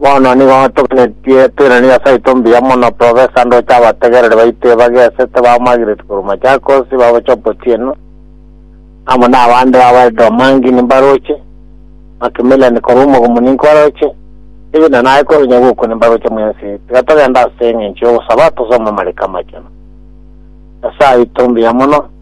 Bono nigo toganetie toirane Nyasae oito mbuya mono professor ndoche abategereri baito ebagesete ba Margaret korwa Machakos baboche Obotieno amo na abande babo Elder Omangi nimbaroche Macmillian korwa Omogomo ninkwaroche David na naye korwa Nyabuku nimbaroche mwensi tiga togende ase eng'encho y'ogosaba tosome amariko amachenu Nyasae oito mbuya mono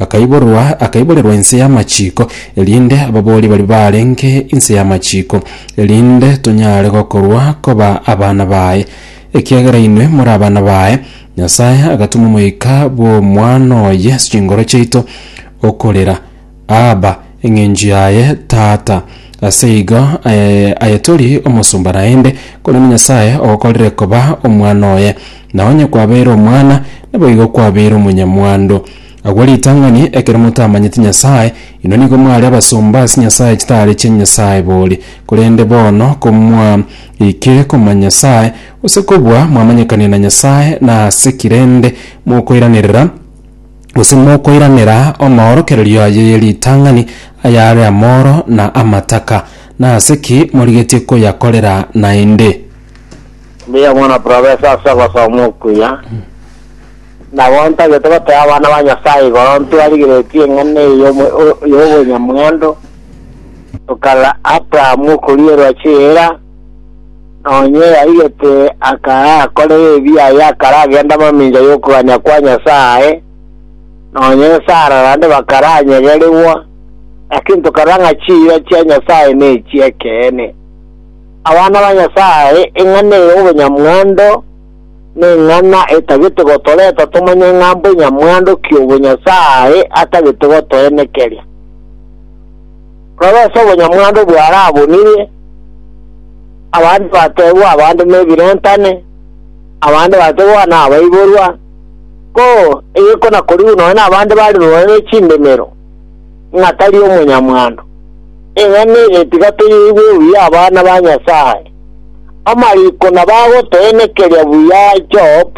Akaiborwa, akaiborerwa inse y'amachiko, erinde ababoori baria baarenge inse y'amachiko, erinde tonyare gokorwa koba abana baye. Ekiagera inwe more abana baye, Nyasae agatoma Omoika bw'Omwana oye ase chingoro chiaito, okorera, Abba, eng'encho yaye, Tata. Ase igo aye, aye tori omosomba naende, korende Nyasae ogokorire koba omwana oye. Na onye kwabeire omwana, naboigo kwabeire omonyamwando. Agwo ritang'ani, ekero motamanyeti Nyasae, inwe nigo mware abasomba ase Nyasae chitari chia Nyasae bori. Korende bono komwa ike komanya Nyasae, gose kobua mwamanyekanire na Nyasae, nase ki rende mokoiranerera, gose mokoiranera amaorokererio aye ye ritang'ani ayare amoro na amataka? Nase ki morigetie koyakorera naende? Mbuya mono professor ase ogosoma okuya. Nabo ntagete goteba abana ba Nyasaye igoro ntwarigeretie eng'ana eye y'omo- o- y'obonyamwando, tokarora Abraham okorierwa chiira, nonye yarigete akara akorere ebi aye akara agenda mamincha y'okogania kwa Nyasaye, nonye Sara naende bakara anyegerigwa, lakini tokarora ng'a chiira chia Nyasaye nechi ekeene. Abana ba Nyasae, eng'ana eye y'obonyamwando neng'ana etagete gotoreta tomanye ng'a mbonyamwando ki obwo Nyasae atagete gotoenekeria. Roreso obonyamwando bwarabunirie, abande batebwa abande nebirentane, abande batebwa nabaiborwa, ko, eye konakorigu nonya nabande bari rorane chindemero. ng'a tari omonyamwando. Eng'ana eye tiga toyeigwe buya abana ba Nyasae. Amariko nabo agotoenekeria buya Job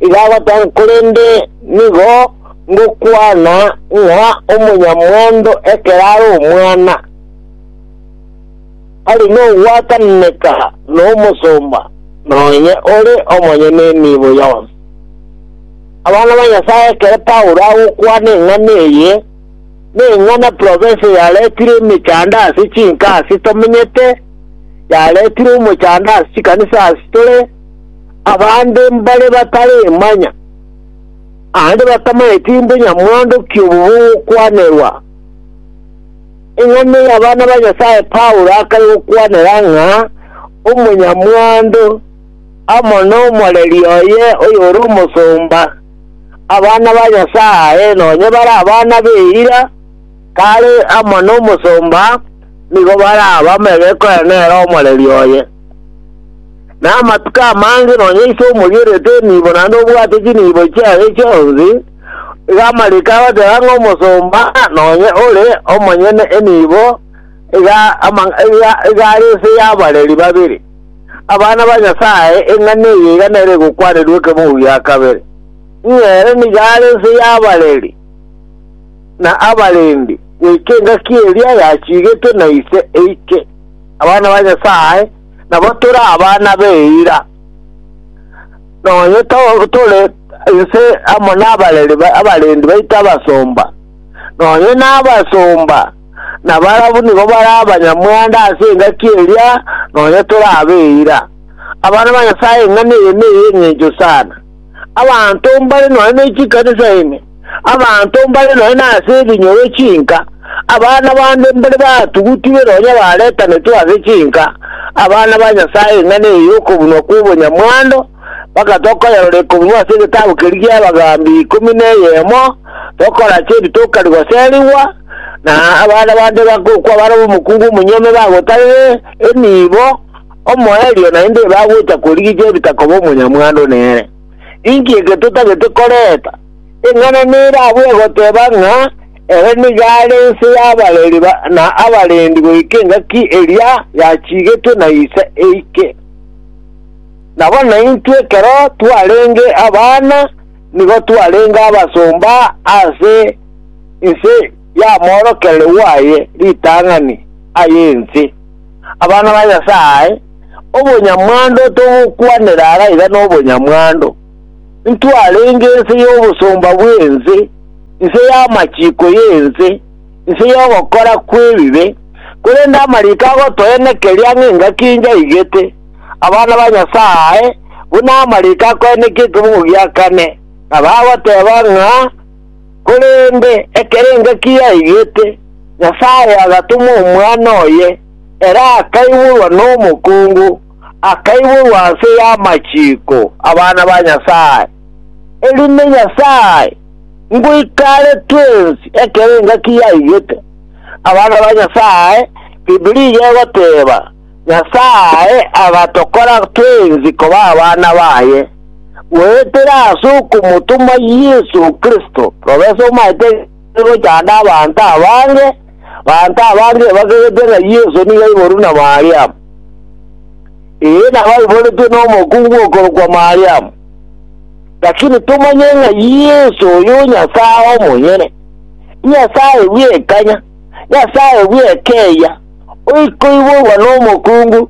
iga agoteba ng'a korende nigo ngokwana ng'a omonyamwando ekero are omwana ari nogwatananeka nomosomba, nonye ore omonyene emiibo yonsi. Abana ba Nyasae, ekero Paulo agokwana eng'ana eye, neng'ana province yaretire emechando ase chinka ase tomenyete, yaretire omochando ase chikanisa ase tore, abande mbare bataremanya, naende batamanyeti inde nyamwando ki obobe ogokwanerwa. Eng'ana y'abana ba Nyasae Paulo akare gokwanera ng'a omonyamwando, amo nomoreri oye oyore omosomba, abana ba Nyasae nonye bare abana b'eira, kare amo nomosomba nigo barabamege koyana nere omoreri oye. Na amatuko amange nonye ise omorierete enibo naende obwate chinibo chiaye chionsi, iga amariko agoteba ng'a omosomba nonye ore omonyene enibo iga iga are ase y'abareri babere. Abana ba Nyasae, eng'ana eye iga nere egokwanerwa ekemogo gia kabere, ng'a ere nigo are ense y'abareri na abarendi, goika engaki eria yachigetwe na Ise eike abana ba Nyasae, nabo tore abana b'eira. Nonye tore ense amo nabareri abarendi baito abasomba, nonye nabasomba na barabwo nigo bare abanyamwando ase engaki eria nonya torabe eira. Abana ba Nyasae eng'ana eye ney'engencho sana. Abanto mbare nonya ne chikanisa ime, abanto mbare nonya nase ebinyoro chinka, abana bande mbare batugutigwe nonya baretanetwe ase chinka, abana ba Nyasae eng'ana eye y'okobunwa kw'obonyamwando mpaka tokoyerora ekobunwa ase egetabu keria gi'abagambi ikomi na eyemo, tokorache ebitoka rigoserigwa, Na abana bande bagokwa bare omokungu omonyene bagotarere enibo omoerio naende bagocha korigia ebita koba omonyamwando nere. Inki eke totagete koreta? Eng'ana nere abwo egoteba ng'a ere nigo are ense y'abareri na abarendi goika engaki eria yachigetwe na ise eike. Nabo naintwe ekero twarenge abana nigo twarenge abasomba ase Inse yamoorokere rwaye ritang'ani aye ense. Abana ba Nyasae, obonyamwando tobokwanera araiga nobonyamwando. Intwarenge inse y'obosomba bw'ense, inse y'amachiko y'ense, inse y'ogokora kw'ebibe, korende amariko agotoenekeria ng'a engaki enyaigete, abana ba Nyasae, buna amariko akoenekia ekeboko gia kane, na bagoteba ng'a, Korende ekero engaki yaigete, Nyasae agatoma Omwana oye, ere akaiborwa nomokungu, akaiborwa ase y'amachiko abana ba Nyasae. Erinde Nyasae ngoika are twensi ekero engaki yaigete abana ba Nyasae, Bibilia egoteba, Nyasae agatokora twensi koba abana baye goetera ase okomotoma Yeso Kristo. Profesa omaete gochanda abanto abange, abanto abange bakerete ng'a Yeso nigo aiboru na Mariamu. Ee, nabo aiboretwe nomokungu okorokwa Mariamu. Lakini tomanye ng'a Yeso oyo Nyasae omonyene, Nyasae bw'ekanya, Nyasae bw'ekeya, oikoiborwa nomokungu,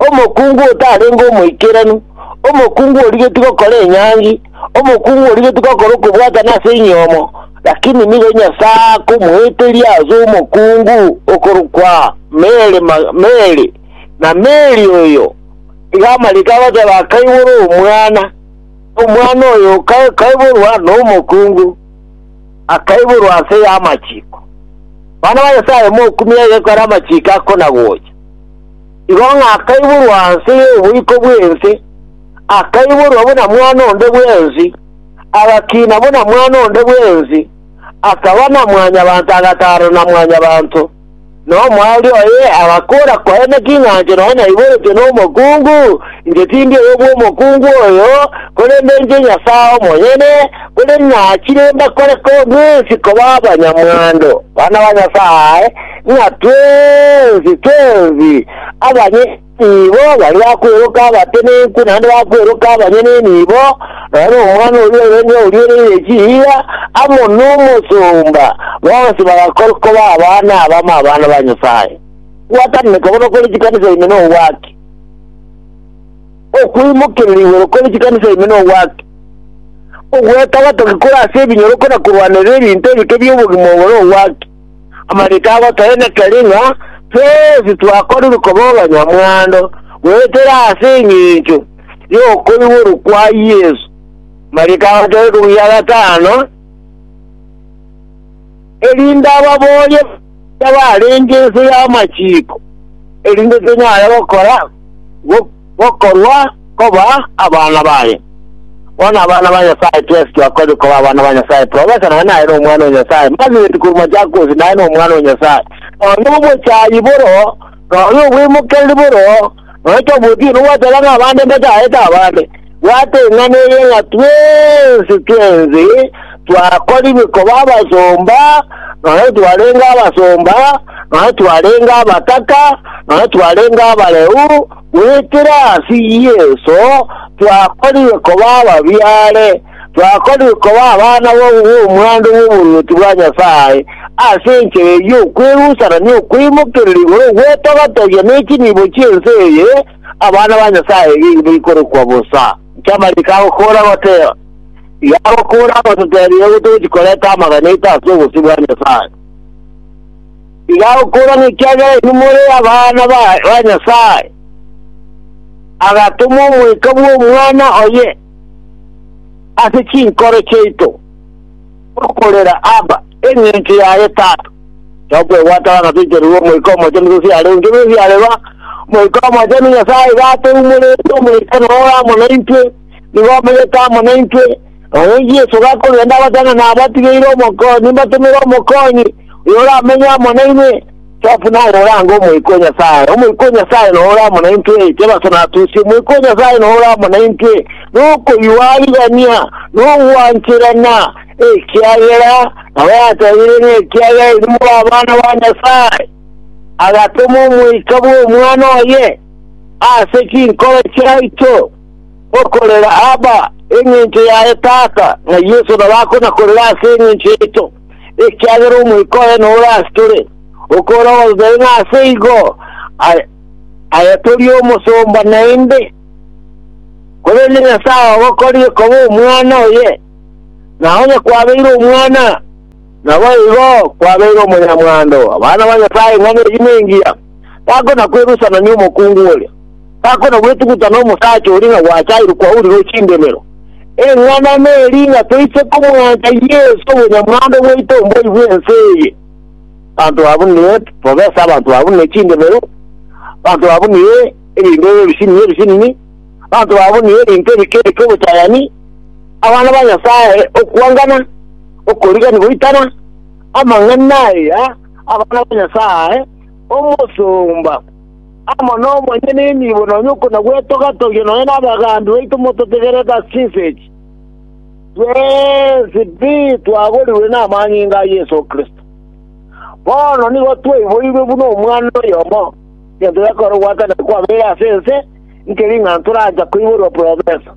omokungu otarenge omoikeranu, omokungu origetie gokora enyangi, omokungu origetie gokora okobwatana ase enyomo, lakini nigo Nyasae akomoeteria ase omokungu okorokwa Mary, Mary, na Mary oyo iga amariko agoteba akaiborwa omwana, omwana oyo okaiborwa nomokungu. akaiborwa ase y'amachiko. Bana ba Nyasaye mokumia egeko are amachiko akonagocha. Igo ng'a akaiborwa nse y'oboiko bw'ense, akaiborwa buna mwana onde bw'ensi, agakina buna mwana onde bw'ensi, akaba na mwanyabanto agataro na mwanyabanto. Na omoerio oye agakoora koene king'ancho nonya aiboretwe nomokungu, inche tindi oyo bw'omokungu oyo, korende inche Nyasae omonyene, korende nachire mbakore korwa mwensi koba abanyamwando, bana ba Nyasae, ng'a twensi twensi abanye Nigo baria bakweroka abatenenku naende bakweroka abanyene nibo, nonya nomwana oria orenge oriereire chiira, amo nomosomba, bonsi bagakorwa koba abana abamo abana ba Nyasae. Gwatananeka bono kore chikanisa ime nogwake. Okoimokerera igoro kore chikanisa ime nogwake. Ogwetaba toki kore ase ebinyoroko na korwanerera ebinto ebike bi'obogima obo nogwake. Amariiko abo toenekeri ng'a twonsi twakorire koba abanyamwando goetera ase engencho y'okoiborwa kwa Yeso. Amariiko abo tari kobuya gatano, erinde ababooria baria barenge inse y'amachiko, erinde tonyare gokora gokorwa koba abana baye. Bono abana ba Nyasae twesi twakobire koba abana ba Nyasae, Profesa naye naye nomwana o Nyasae, Margaret korwa Machakos naye nomwana o Nyasae, nonya obochayi boro, nonya obweimokereri boro, nonya tofauti eye nogwateba ng'a abande mbachaete abande. Bwata eng'ana eye ng'a twensi tw'ense twakorigwe koba abasomba, nonya twarenge abasomba, nonya twarenge abataka, nonya twarenge abareu, goetera ase Yeso twakorigwe koba ababiare, twakorigwe koba abana b'omwando bw'oboruoti bwa Nyasae ase enchera ey'okwerusanania okoimokerera igoro gw'etogatogia ne chinibo chi'ense eye, Abana ba Nyasae nigo baikorokwa bosa. Chiamariko agokoora goteba, Iga agokoora agototebia igo togochi koreta amaganeto ase obosio bwa Nyasae. Iga agokoora nekiagera inwe more abana ba ba Nyasae. Agatoma omoika bw'Omwana oye ase chinkoro chiaito. Okorera, Abba, engencho yaye, Tata. Tokwebwata bana toichererwe Omoika Omochenu gose arenge bonsi are ba. Omoika Omochenu, Nyasae iga atoumorete, Omoika noyo ore amo naintwe, nigo omenyete amo naintwe. Noyo Yeso gakogenda, abatang'ane abatigeire Omokonyi, mbatomere Omokonyi, oyio oramenye amo nainwe. Top naye orange Omoika o Nyasae, Omoika o Nyasae noro ore amo naintwe, Jebaso natusie, Omoika o Nyasae noro ore amo naintwe, nokoyua arigania, nogwancherana, ekiagera nabo yatebire ng'a ekiagera inwe more abana ba Nyasae. Agatoma Omoika bw'Omwana oye ase chinkoro chiaito, okorera Abba, engencho yaye Tata, ng'a Yeso nabo akona korera ase engencho yaito. ekiagera Omoika oye nore ase tore, okore ogoseseri ng'a ase igo aye, aye tori omosomba naende, korende Nyasae ogokorire koba omwana oye, na onye kwabeire omwana, naboigo kwabeire omonyamwando. Abana ba Nyasae ing'ana eyi nengiya, takona-kwerusanania omokungu oria. Takona gwetuguta nomosacha oria ng'a gwachaire kwaurigwe chindemero. Eng'anana eri ng'a toise komwancha Yeso obonyamwando bwaito mboyi bw'ense eye. Banto abwo nigo tobesa abanto babwo ne chindemero, banto babwo nigo ebinto ebisinini ebisinini, banto babwo nigo ebinto ebike-bike obochayani, abana ba Nyasae, okwangana, okorigani goitana, amang'ana aya, abana ba Nyasae, omosomba. amo nomonyene enibo nonya okona gwetoga-togia nonya nabagambi baito mototegerete ase chinsa echi, twensi pi twagorigwe namanyinga a Yeso Kristo. Bono nigo twaiboirwe buna omwana oyomo, egento gekore ogwatanana kwabeire ase ense, nkeri ng'a torancha koiborwa profesa.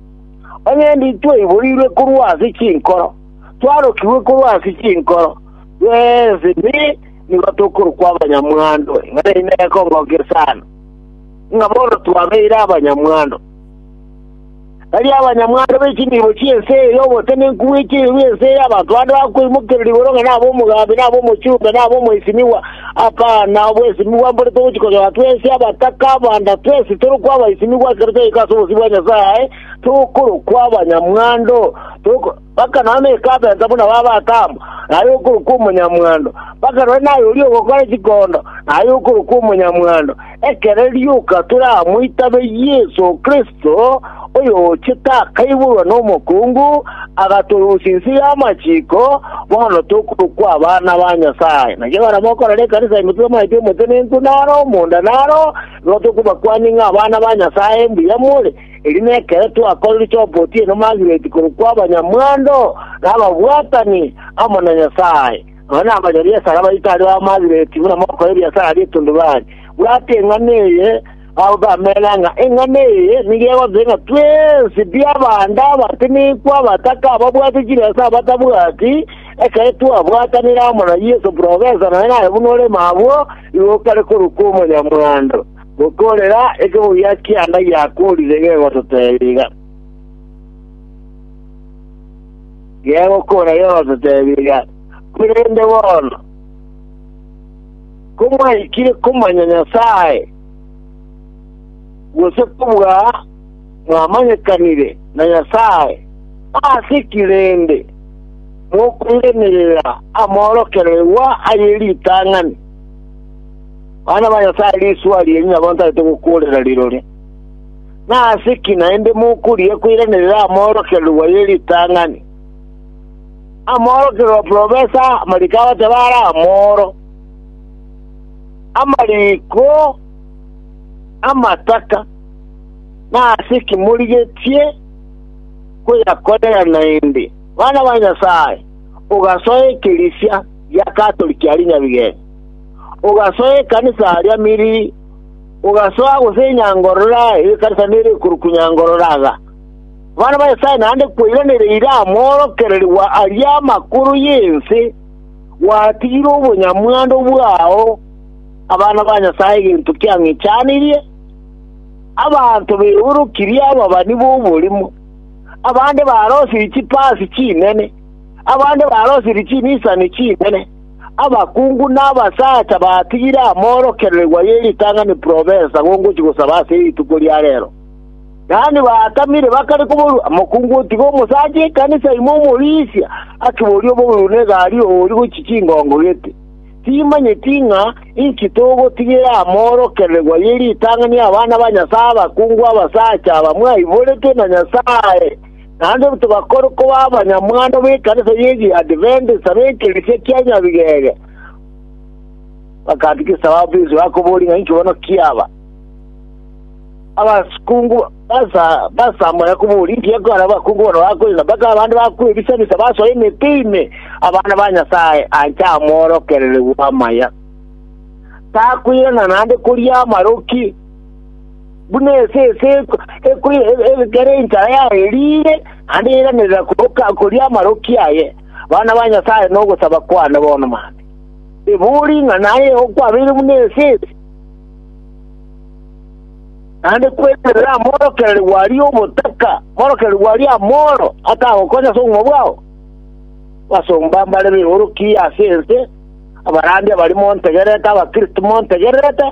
Onye ndi twaiboirwe korwa ase chinkoro, twarokigwe korwa ase chinkoro, twensi pi nigo tokorokwa abanyamwando, ng'a neri nekongokia sana, ng'a bono twabeire abanyamwando. Baria abanyamwando be chinibo chi'ense eye y'obotenenku bwe chibi bw'ense eye, abanto bande bakoimokererwa igoro ng'a naba omogambi, naba omochumbe, naba omoisimigwa, apana, obwesimigwa mbore togochia konyora twensi abataka abanda, twensi torokwa abaisimigwa ekero twaika ase obosio bwa Nyasae, tokorokwa abanyamwando, toko- mpaka nonya ekabeta buna b'abataamwa, na aye okorokwa omonyamwando, mpaka nonya naye oria ogokora chikondo, na aye okorokwa omonyamwando, ekero rioka tore amo itabe Yeso Kristo, oyoochete akaiborwa nomokungu, agatoroisia inse y'amachiko, bono tokorokwa abana ba Nyasae. Naki ekero mokorora ekanisa ime totamanyeti omotenenku naro, omonda naro, nigo tokobakwania ng'a abana ba Nyasae mbuya more, Eri nekero twakorire chi'obotieno Margaret korokwa abanyamwando na ababwatani amo na Nyasae. Nonya nabanyabiasara baito aria ba Margaret buna mogokora ebiasara bi'etundubari, bwata eng'ana eye, babe bamena ng'a eng'ana eye nigo egotegia ng'a twensi bi'abande abatinigwe, abataka, ababwate chibesa, abatabwati, ekero twabwatanire amo na Yeso, Profesa, nonya naye buna ore mabwo, igo okare korokwa omonyamwando. Gokoorera ekegogia ki'enda giakoorire gegototebiga, gegokoora gegototebiga, korende bono, komwaikire komanya Nyasae, gose kobua mwamanyekanire na Nyasae, ase ki rende mokoiraneria amorokererwa aye ritang'ani? Bana ba Nyasae, risuha rienyu nabo ntarete gokuurera rirore. Nase ki naende mokuria koiraneria amoorokererwa ye ritang'ani? Amoorokererwa profesa amariko abateba are amooro, amariko amataka, nase ki morigetie koyakorera naende? Bana ba Nyasae, ogasoa ekerisia gia Katoliki aria nyabigeni. Ogasoa ekanisa aria Miri, ogasoa gose enyangorora y'ekanisa nere ekorokwa enyangorora iga. Abana ba Nyasae naende kweiranereire amoorokererigwa aria amakoro y'ense, gwatigire obonyamwando bwao abana ba Nyasae egento kiang'ichanirie, abanto beorokirie ababani b'oborimo, abande barosirie chipasi chinene, abande barosirie chinisani chinene, Abakungu na abasacha batigire amorokererigwa ye ritang'ani provensa gongochia gosaba ase rituko ria reero. Yaani baatamire bakare koborua, Mokungu otiga omosacha ekanisa ime omorisia akiborie obogiru na egari oori gochia chingongo gete. Timanyeti ng'a inki togotigera amorokererigwa ye ritang'ani abana ba Nyasae abakungu abasacha aba mwaiboretwe na Nyasae. naende tibakore koba abanyamwando b'ekanisa y'Echiadventist b'ekerecha kia Nyabigega. Bakatikisa ababisi bakoboria ng'a inki bono kiaba. Abakungu basa basamaya koboria inki ekora abakungu bono bakoina mpaka abande bakwebisa-bisa basoe emete ime abana ba Nyasae ancha amworokererigwe amaya. Takwirana naende koria amaroki buna esese ekere enchara yaye riire, naende yairanera koria amaroki aye. Abana ba Nyasae nogosaba kwane bono mambia, ebori ng'a naye okwabeire buna esese, naende kwenerera amorokererigwe aria obotaka, amorokererigwe aria amoro atagokonya ase obogima bwao. Abasomba mbare beoroki ase ense, abarandia barimo ntegerete, Abakristo montegererete,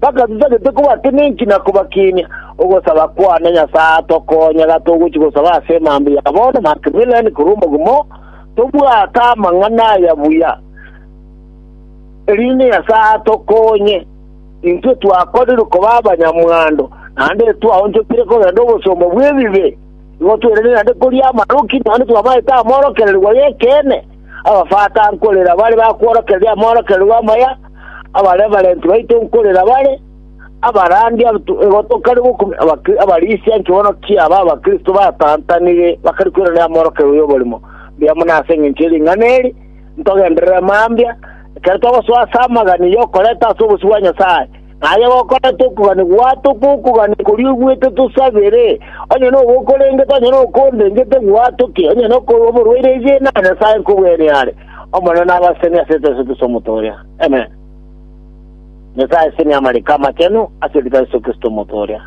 Bakasusa gete kobatenenki na kobakinia. Ogosaba kwane, Nyasae, tokonye gatogochia gosaba ase emambe ya bono, Macmillan, korwa omogumo, tobwate amang'ana aya buya, erinde Nyasae atokonye intwe twakorirwe koba abanyamwando, naende twaonchokire kogenda obosomba bw'ebibe, igo twerende naende koria amaroki, naende twamaete amorokererigwa y'ekeene. Abafata nkorera bare bakworokereria amorokererio amaya, abare abarenti baito nkorera bare, abarandia igo tokari gokumi, abarisia ekeono kiabo abakristo batantanire bakari kweranera amorokererio y'oborimo. Mbuya mono ase engencho ye ring'ana eri, ntogenderere mambia, ekero togosoa ase amagani y'okoreta ase obosio bwa Nyasae, Aye gokorete okogania gwato kw'okogania koria oigwete tosabere, onye nobe okorengete, onye nokondengete gwatoke, onye nokorwa oborwaire oiche na Nyasae nkobwene are. Omonene nabasemi ase Yeso Kristo Omoto oria. Amen. Nyasae asemi amariko amachenu ase rita Yeso Kristo Omoto oria.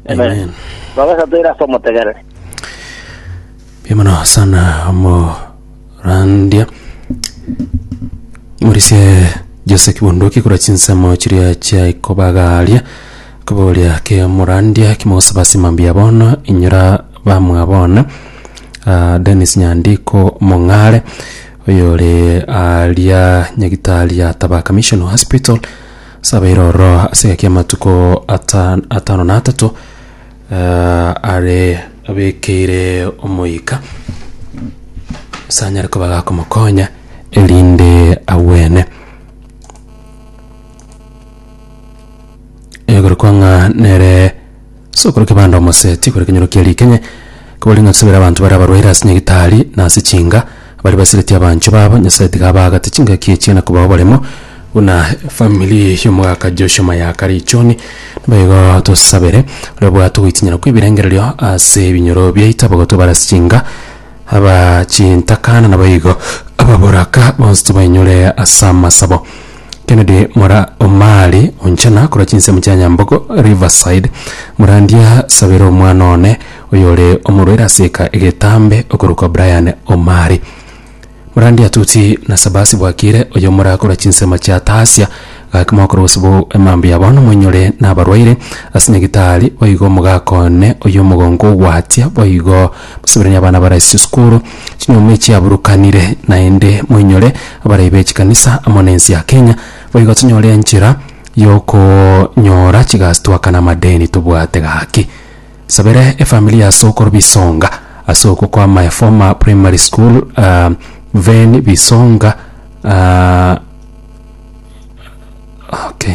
Amen. Baba Satoire ase omotegereri. Mbuya mono sana omo randia morisie jose kibondoki kora chinsemo chiria chiaye kobagaria koboria ke morandia kimosaba simambia bono inyora bamwa bono Ah, Dennis Nyandiko Mong'are oyore aria nyagitari ya Tabaka Mission Hospital sabeire oro ase egaki amatuko ata- atano na atato are abekeire omoika sanyare koba gakomokonya erinde agwene. Egorokwa ng'a nere sokoro kebanda omoseti, korende ekenyoro kia rikenye, kobori ng'a tosabere abanto bare abarwaire ase nyagitari na ase chinga, Baria basireti abanchwa babo, Nyasae tiga abaagate chingaki echia na kobao baremo, buna efamiri y'omogaka Joshua Mayaka richoni. Naboigo tosabere oria obwate ogoitinyana kw'ebirengererio ase ebinyoro biaito, abagotwe bare ase chinka, aba chintakana, naboigo ababoraka bonsi tobainyore ase amasabo. Kennedy mora Omari onchana korwa chinsemo chia Nyambogo, Riverside, morandia sabera omwana one oyore omorwaire ase eka egetambe okorokwa Brian Omari. Morandia Tuti na Sabasi Bwakire oyo mora korwa chinsemo chia Tasia gaki mogokora gose bo emambi ya bono moinyore nabarwaire ase nyagitari boigo mogakone oyo omogongo ogwatia boigo Basaberanie abana baraise chisukuru, chinyuoma echi chiaburukanire, naende moinyore abarai be chikanisa amo nense ya Kenya, boigo tonyore enchera yokonyora chigasi twakane amadeni tobwate gaki. Sabera efamili ya Sokoro Bisonga ase okwo kwa my former primary school Ven Bisonga uh, okay.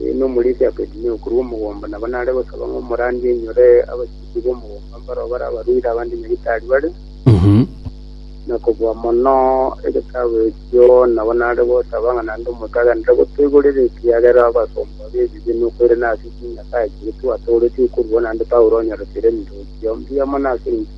Nomorisia Abedinego korwa omogomba nabo nare gosaba ng'a omorandi ainyore abachiki b'omogomba mbaro barabaruire abande nyagetari bare, na kobua mono egetabu ekio nabo nare gosaba ng'a naende omonto agenderere gotoigorera ekiagera abasomba b'ebibe nokoirana ase chinyasae chiria twatooretie okorua naende Paulo onyorete ere ementoki chiao mbuya mono ase enchili.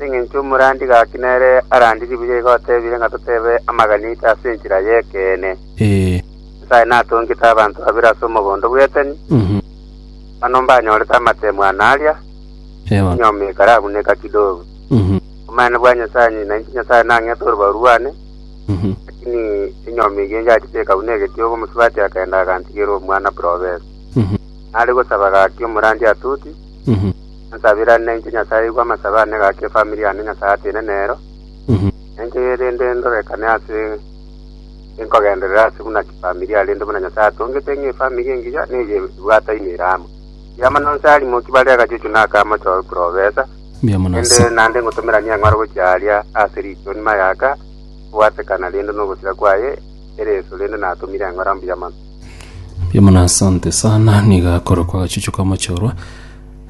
Nengencho omorandi gaki nere arandirie buya igo otebire ng'a totebe amagani aito ase enchera y'ekeene. Nyasae natongete abanto babere ase omogondo bw'eteni, manu mbanyorete amatemo ano aria, enyomo ekarabuneka kidogo. Omonene bwa Nyasae ng'ai? Nainche Nyasae nang'ete orobao rwane, lakini enyomo eyio enchati tekabuna egetiogo, omosubati akagenda agantigera omwana bw'robesa. Nare gosaba gaki omorandi atuti. Nsabirane inche Nyasae igwa amasabe ane gaki efamiri yane Nyasae atiine nero, na inche rende ndorekane ase nkogenderere ase buna chifamilia rende buna Nyasae atongete ng'a efamiri engiya neye ebwate imera amo. Ekiagera mono inse arimoki bare agachuchu na aka amochoo eprofesa, Mbuya mono rende ase naende ngotomeranie eng'oro gochia aria ase riichoni mayaka, obwatekana rende nogosira kwaye ereso rende natomire eng'ora mbuya mono. Mbuya mono asante sana niga akorokwa agachuchu ka omochorwa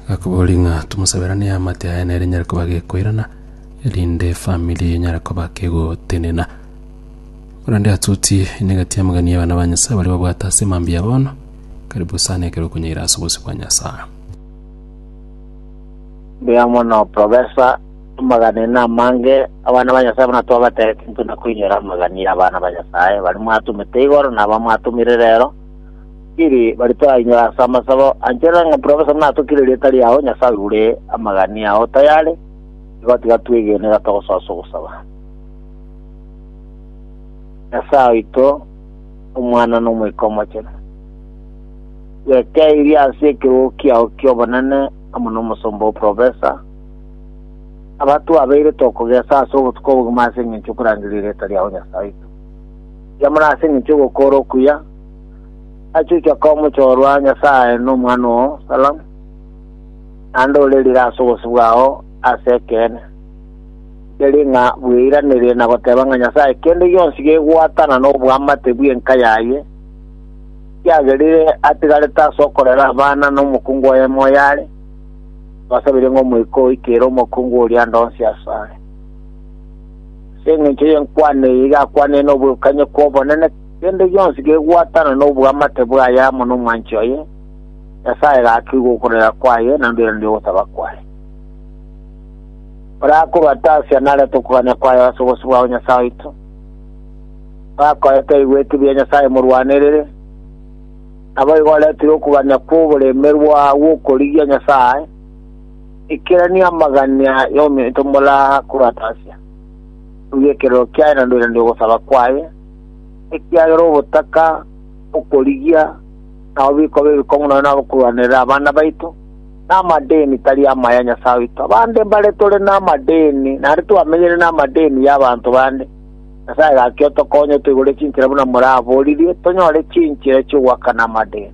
gakoboria ng'a tomosaberanie amate aye nere nyare koba gekoirana erinde efamiri enyare koba kegotenena korende atoti enegati amagani ya abana ba Nyasaye baria babwate ase mambia bono karibu sana ekero okonyaira ase obosio bwa Nyasaye. Mbuya mono Professor. Amagana ene amange abana ba Nyasae buna twabatebete, intwe na koinyora amagana ya abana ba Nyasae baria mwatomete igoro na aba mwatomire rero, tiri baria torainyore ase amasabo. Ancherera ng'a Profesa buna atokire erieta riao, Nyasae oigure amagani ao tayari, igo tiga twegene iga togosoa ase ogosaba. Nyasae oito, Omwana na Omoika Omochenu, twekeirie ase ekerogo kiao ki'obonene amo na omosomba oo Profesa, abatwabeire tokogesa ase obotuko obogima ase engencho yokorangeria erieta riao Nyasae oito. Riamore ase engencho yogokora okuya, achuche akaba omochorwa Nyasae na omwana oo, Salam, naende ore rire ase obosio bwao ase ekeene. Teri ng'a bweiranerie na goteba ng'a Nyasae kende gionsi gegwatana n'oboamate bw'enka yaye, kiagerire atigarete ase okorera abana na omokungu oye moyo are, Basabire ng'a Omoika oike ere omokungu oria ande onsi asare. Ase engencho y'enkwana eye igakwane noboirukanyo kw'obonene, kende gionsi gegwatana nobwamate bwaye amo nomwanchi oye, Nyasae gakeigwa okorera kwaye na ndweranire ogosaba kwaye. Oria akorwa ata Asia narete okogania kwaye ase obosio bwao Nyasae oito, oyo akoete aigwete ebiya Nyasae morwanerere, Naboigo oretere okogania kw'oboremerwa gw'okorigia Nyasae, ikerania amagania y'omonto morakoratasia. Rugia ekerero kiaye na ndoiranie ogosaba kwaye, ekiagera obotaka okorigia nabo bikoba ebikong'u nonya nabokorwanerera abana baito, na amadeni tari amaya ya Nyasae oito. Abande mbare tore namadeni, naende twamenyere namadeni y'abanto bande. Nyasae gaki otokonye otoigure chinchera buna moraboririe, tonyore chinchera chi'ogoakana amade.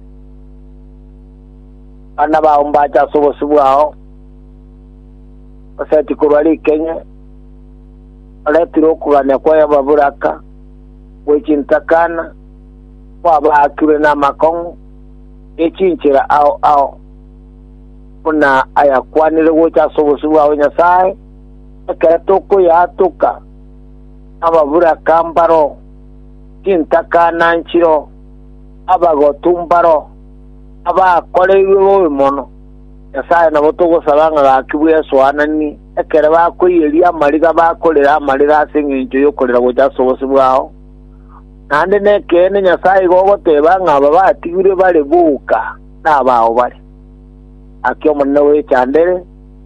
Abana bao mbache ase obosio bwao, oseti korwa rikenye, oretire okogania kw'ababoraka, gwe chintakana, kwabaakirwe namakong'u, ne chinchera ao ao, buna ayakwanire gocha ase obosio bwao, Nyasae, ekero tokoyaatoka, ababuraka mbaro, chintaka na nchiro, abagotu mbaro, abakoreirwe bobe mono. Nyasae nabo togosaba ng'a gaki bw'esoanani, ekero bakoiyeria amariga bakorere amarira ase engencho y'okorera gocha ase obosio bwao. Naende nekeene Nyasae igo ogoteba ng'a aba batigirwe bare boka nabao bare. Gaki Omonene oechandere,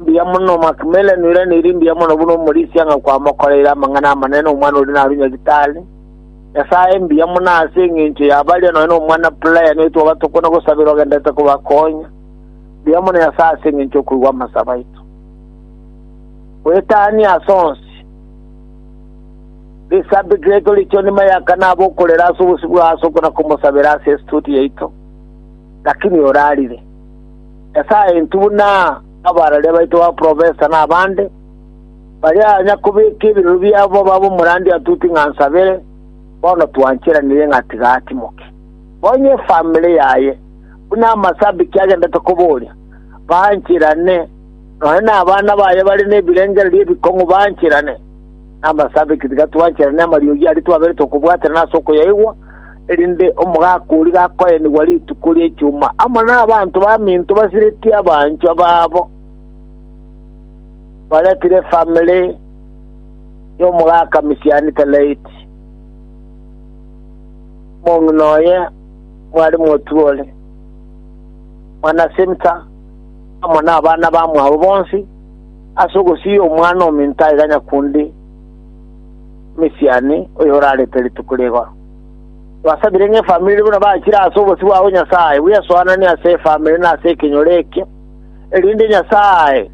Mbuya mono Macmillan, ore neri mbuya mono buna omorisia ng'a kwamokoreire amang'ana amanene omwana oria narue nyagitari. Nyasae mbuya mono ase engencho ya baria nonya nomwana Brian oyo twaba tokona gosabera ogenderete kobakonya. Mbuya mono Nyasae ase engencho okoigwa amasabo aito. Goetania ase onsi. This subject yaito richo nima ya kana abo okorera ase obosibwa ase okona komosabera ase estudio yaito. Lakini orarire. Nyasae intwe buna abarari baito baprofesa na abande, baria anya kobeka ebirero biabo babe omorandia atuti ng'a nsabere, bono twancheranire ng'a tiga atimoke. Onye efamiri yaye, buna amasabiki agendete koboria, bancherane, nonye nabana baye bare nebirengererio ebikong'u bancherane. Amasabeti tigatwanchere namariogi aria twaberete okobwaterana ase okoyaigwa, erinde omogaka oria gakoenigwa rituko ria Ichuma amo nabanto baminto basiretie abanchwa babo, baretire efamiri yomogaka misiani Telaiti, omong'ina oye mware Motuoli, mwana Simta, amo nabana bamwabo bonsi, Ase ogosiria omwana ominto aiga nyakundi misiani oyorarete rituko rigoro. Twasabire ng'a efamiri buna bachire ase obosio bwabo Nyasae bwesoananie ase efamiri na ase ekenyoro ekio, erinde Nyasae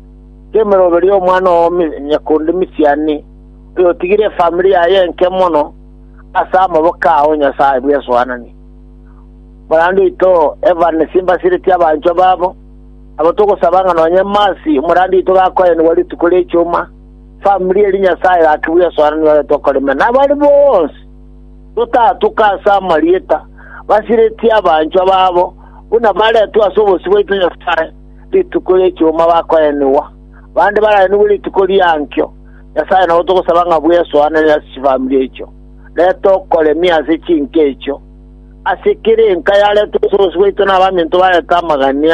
temeroberia omwana oo nyakundi misiani oyotigire efamiri yaye enke mono ase amaboko ao Nyasae bwesoananie. Morande oito Evan Simbasireti abanchwa babo, Nabo togosaba ng'a nonye Masi, omorambe oito gakoenigwa rituko ri'echuma, famiri eria Nyasae gaki bw'esoeranio ore tokoreme, na baria bonsi totatuka ase amarieta, basiretie abanchwa babo, buna baretwe ase obosio bwaito Nyasae rituko ri'echuma bakoenigwa, bande baraenigwe rituko riankio. Nyasae, nabo togosaba ng'a bw'esoanere ase chifamiri echio, ne tokoremie ase chinka echio, ase kera enka yaretwe ase obosio bwaito na abaminto barete amagania,